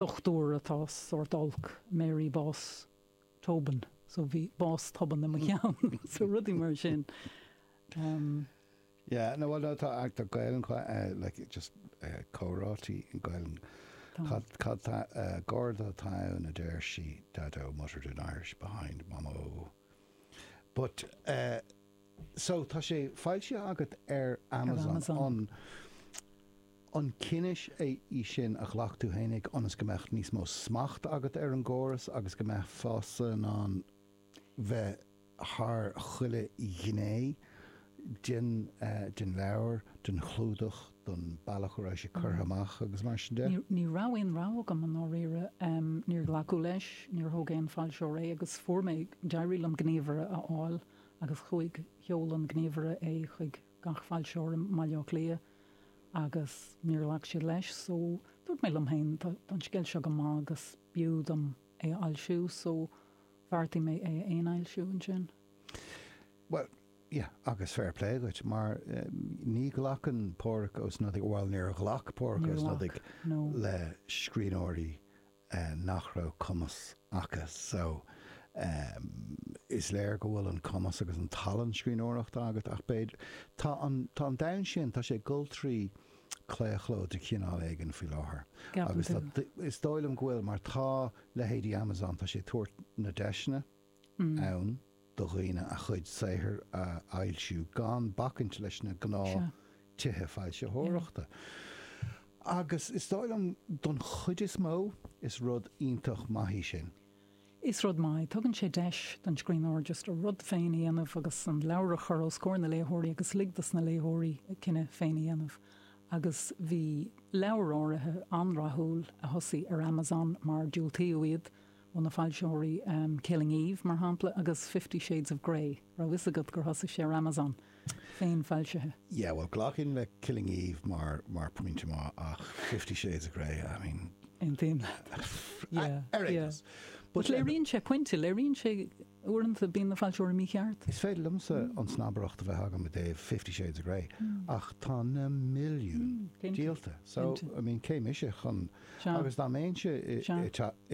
dochtúir atá sórt olc, Mary Bás Tobin, so bhí bás tobann i mo cheann, so rudaí mar sin umm. Yeah, no bhuel tá tá Gaeilge like just comhráití Gaeilge, tá comhrá atá ann a deir sí Daideo muttered in Irish behind Mamó's back, So, tá sé foilsithe agat ar Amazon. An an cinneadh é í sin a ghlac tú fhéinig ionas go mbeadh níos mó smacht agat ar an gcóras agus go mbeifeása in ann bheith thar chuile ghné den den leabhar, den chlúdach, don bealach a raibh sé curtha amach agus mar sin de? Ní raibh aon rogha agam i ndáiríre. Níor glacadh leis, níor thóg aon foilseoir é agus fuair mé, d'éirigh liom gníomhaire a fháil agus chuaigh, sheol an gníomhaire é chuig gach foilseoir i mBaile Átha Cliath agus níor ghlac siad leis so dúirt mé liom féin tá an scéal seo go maith agus b'fhiú dom é a fhoilsiú so bheartaigh mé é a fhéinfhoilsiú ansin. Bhuel, yeah, agus fair play dhuit mar ní ghlacann Pádraig Ó Snodaigh, bhuel níor ghlac Pádraig Ó Snodaigh le scríbhneoirí nach raibh cumas aca so is léir go bhfuil an cumas agus an talann scríbhneoireachta agat ach b'fhéidir, tá an domhan sin, tá sé ag dul trí claochló de chineál éigin faoi láthair agus is dóigh liom go bhfuil mar tá leithéidí Amazon, tá sé ag tabhairt na deiseanna, ann do dhaoine a chuid saothair a fhoilsiú gan bacaint leis na gnáth tithe foilsitheoireachta. Agus is dóigh liom, don chuid is mó, is rud iontach maith í sin. Is rud maith é. Tugann sé deis don scríbhneoir just a rud féin a dhéanamh agus an leabhar a chur os comhair na léitheoirí agus lig dos na léitheoirí a gcinneadh féin a dhéanamh. Agus bhí leabhair áirithe an-rathúil a thosaigh ar Amazon mar diúltaíodh iad. ó na foilsitheoirí Killing Eve, mar shampla, agus Fifty Shades of Grey, raibh fhios agat gur thosaigh sé ar Amazon, féinfhoilsithe? Yeah, bhuel, ghlacfainn le Killing Eve mar phointe maith, ach Fifty Shades of Grey, I mean. Aontaím leat. Yeah, yeah. Ar aon nós. But léiríonn sé pointe, léiríonn sé. Uaireanta bíonn na foilseoirí mícheart. Is féidir liomsa an snabaireacht a bheith agam i dtaobh Fifty Shades of Grey ach tá na milliún díolta so I mean cé mise chun agus dá mbeinnse i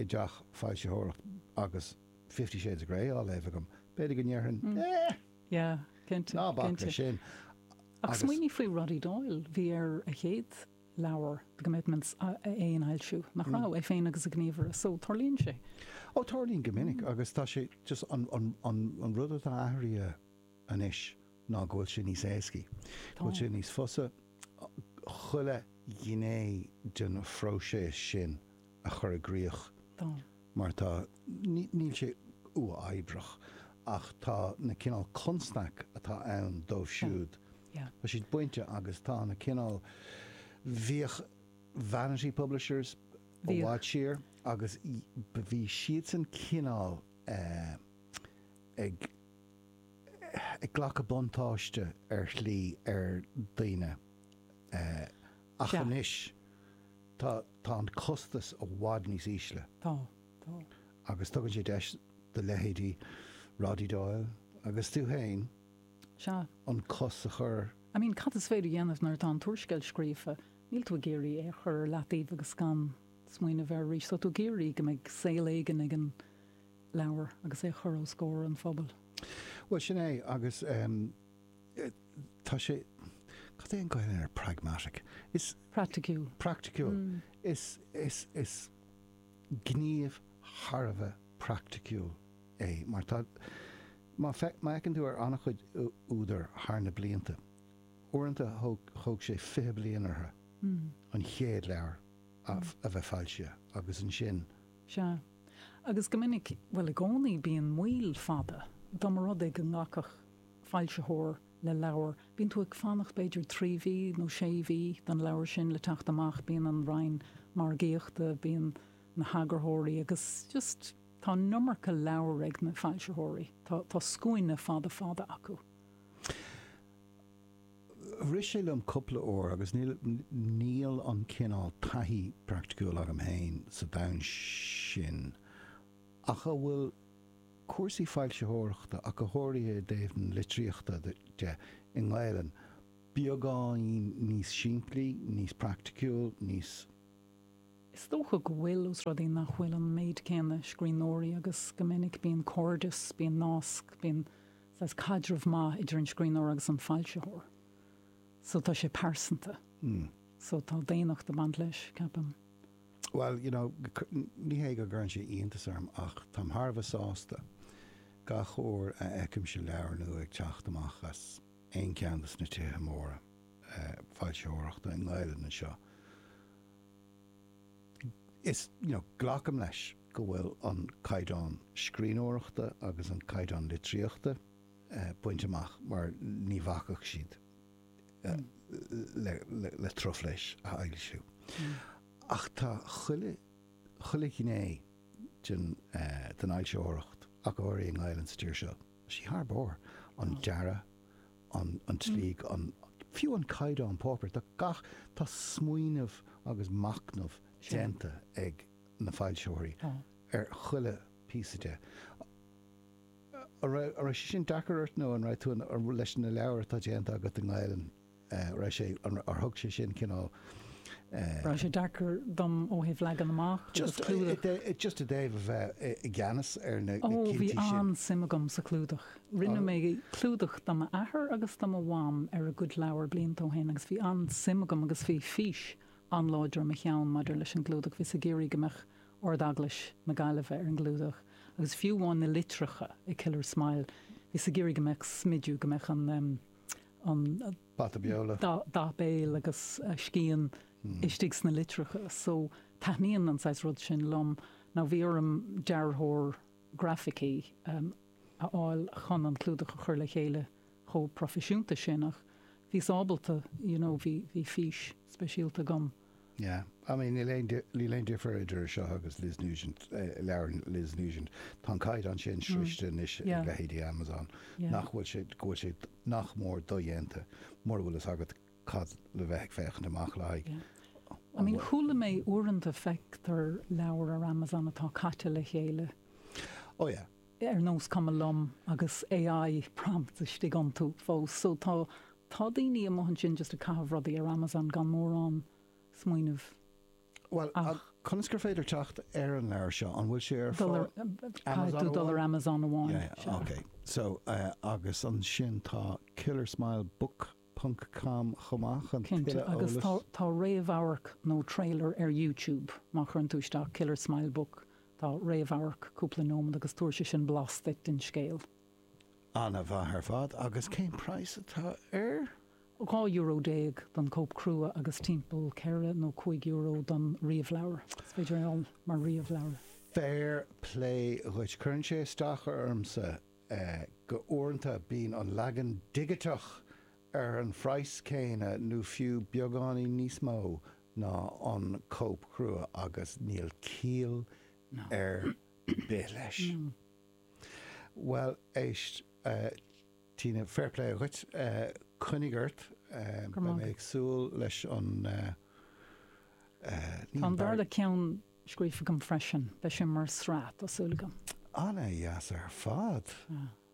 dteach foilsitheoireacht agus Fifty Shades of Grey á léamh agam b'fhéidir go ndéarfainn ná bac leis sin. Ach smaoinigh faoi Roddy Doyle, bhí air a chéad. leabhar The Commitments a fhéinfhoilsiú, nach raibh, é féin agus a ghníomhaire. So, tarlaíonn sé. Ó, tarlaíonn go minic agus tá sé just an, an, an, an rud atá athraithe anois ná go bhfuil sé níos éascaí, go bhfuil sé níos fusa chuile ghné den phróiseas sin a chur i gcríoch. Tá. mar tá, níl sé uathoibreach ach tá na cineál constaic a bhí ann dóibh siúd, tá siad bainte agus tá na cineál, bhíodh Vanity Publishers i bhfad siar agus bhí siadsan cineál ag glacadh buntáiste ar shlí ar dhaoine ach anois tá, Tá an costas i bhfad níos ísle. Tá. Tá. Agus tugann sé deis do leithéidí Roddy Doyle agus tú féin Sea. an cos a chur. I mean, cad is féidir a dhéanamh nuair atá an t-úrscéal scríofa? Níl tú ag iarraidh é a chur ar leataobh agus gan smaoineamh air arís. Tá tú ag iarraidh go mbeidh saol éigin ag an leabhar agus é a chur os comhair an phobail. Bhuel, sin é. Agus, em, tá sé, cad é an Gaeilge ar pragmatic? Is. Praiticiúil. Praiticiúil. Is, is, is gníomh thar a bheith praiticiúil é mar tá, má feic, má fhéachann tú ar an-chuid údar thar na blianta, uaireanta thóg, thóg sé fiche bliain orthu an chéad leabhar a, a bheith foilsithe agus ansin. Sea. Agus go minic, bhuel i gcónaí bíonn moill fada, dá mba rud é go nglacfadh. foilsitheoir le leabhar, bíonn tú ag fanacht b'fhéidir trí mhí nó sé mhí don leabhar sin le teacht amach, bíonn an Roinn Margaíochta, bíonn na heagarthóirí agus just tá an iomarca leabhar ag na foilsitheoirí, tá scuaine fada fada acu. Rith sé liom cúpla uair agus níl, níl an cineál taithí praiticiúil agam féin sa domhan sin ach an bhfuil cúrsaí foilsitheoireachta ach go háirithe i dtaobh na litríochta de, i nGaelainn, beagáinín níos simplí, níos praiticiúil, níos. Is dócha go bhfuil, ós rud é nach bhfuil an méid céanna scríbhneoirí agus go minic bíonn cairdeas, bíonn nasc, bíonn saghas caidreamh maith idir an scríbhneoir agus an foilsitheoir. So tá sé pearsanta. So tá daonnacht ag baint leis, ceapaim. Bhuel, you know, ní hé go gcuireann sé iontas orm ach táim thar a bheith sásta gach uair a fheicimse leabhar nua ag teacht amach as aon cheann de na tithe móra foilsitheoireachta i nGaelainn anseo. Is, you know, glacaim leis go bhfuil an caighdeán scríbhneoireachta agus an caighdeán litríochta bainte amach mar ní bhacfadh siad le truflais a fhoilsiú. Ach tá chuile ghné den fhoilsitheoireacht, ach go háirithe i nGaelainn sa tír seo, tá sí thar barr, an dearadh, an tslí, fiú an caighdeán páipéir. Tá gach, tá smaoineamh agus machnamh déanta ag na foilsitheoirí ar chuile phíosa de. An raibh sé sin deacair ort nó an raibh tú i, leis na leabhair atá déanta agat i nGaelainn, an raibh sé, ar thug sé sin cineál eh. An raibh sé deacair dom ó thaobh leagan amach agus clúdach? Just i dtaobh a bheith i gceannas ar na cinntí sin. Ó, bhí an-suim agam sa chlúdach. Rinne mé clúdach do m'athair agus do mo mham ar a gcuid leabhar blianta ó shin agus bhí an-suim agam agus bhí fís an-láidir i mo cheann maidir leis an gclúdach, bhíos ag iarraidh go mbeadh Ard-Eaglais na Gaillimhe ar an gclúdach agus fiú amháin na litreacha i Killer Smile, bhíos ag iarraidh go mbeadh smidiú, go mbeadh an. Bata Beola. dath béil agus scian istigh sna litreacha. So, taitníonn an saghas rud sin liom. Now, bhí orm dearthóir grafaicí a fháil chun an clúdach a chur le chéile chomh proifisiúnta sin ach bhíos ábalta, you know, bhí fís speisialta agam. Yeah. I mean níl aon, níl aon difear idir seo agus Liz Nugent, leabhar Liz Nugent. Tá an caighdeán sin sroichte anois ag leithéidí Amazon nach bhfuil sé, go bhfuil sé nach mór dodhéanta mura bhfuil fhios agat cad le bheith ag féachaint amach le haghaidh. I mean, chuala mé uaireanta feictear leabhar ar Amazon atá caite le chéile. Oh yeah. ar nós cuma liom agus AI prompt istigh iontu fós. So tá tá daoine amuigh ansin just ag caitheamh rudaí ar Amazon gan mórán smaoinimh Bhuel ach. conas gur féidir teacht ar an leabhar seo? An bhfuil sé ar, dul ar, caithfidh tú dul ar Amazon amháin. Yeah, yeah. Sea. Okay. So, eh, agus ansin tá Killer Smile Book. ponc cam chomh maith chun tuilleadh eolais. Cinnte, agus tá réamhamharc nó trailer ar YouTube, má chuireann tú isteach Killer Smile Book, tá réamhamharc cúpla nóiméad agus tabharfaidh sé sin blas duit den scéal. An-mhaith ar fad, agus cén praghas atá air? Dhá euro déag don cóip crua agus timpeall ceithre nó cúig euro don ríomhleabhar. Is féidir é a fháil mar ríomhleabhar. Fair play dhuit. Cuireann sé isteach ormsa. ii, Uaireanta bíonn an leagan digiteach ar an phraghas céanna nó fiú beagáinín níos mó ná an cóip chrua agus níl ciall ar bith leis. Bhuel, éist, a Tina, fair play dhuit, coinnigh ort, beidh mé ag súil leis an, ní an dara, scríofa agam freisin. Beidh sé mar sraith, tá súil agam. An-deas ar fad.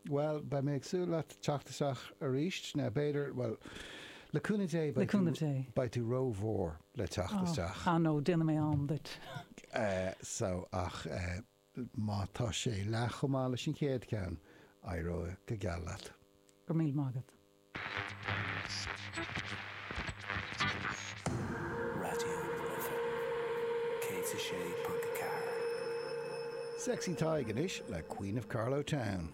Bhuel, beidh mé ag súil leat teacht isteach aríst. Now, b'fhéidir, bhuel, le cúnamh Dé, beidh tú, beidh tú ró-mhór le teacht isteach. Ah no, déanfaidh mé am duit. So, ach má tá sé leath chomh maith leis an chéad ceann, éireoidh go geal leat. Go raibh míle maith agat. Raidió na Life 106.4. Sexy Tadhg anois le Queen of Carlow Town.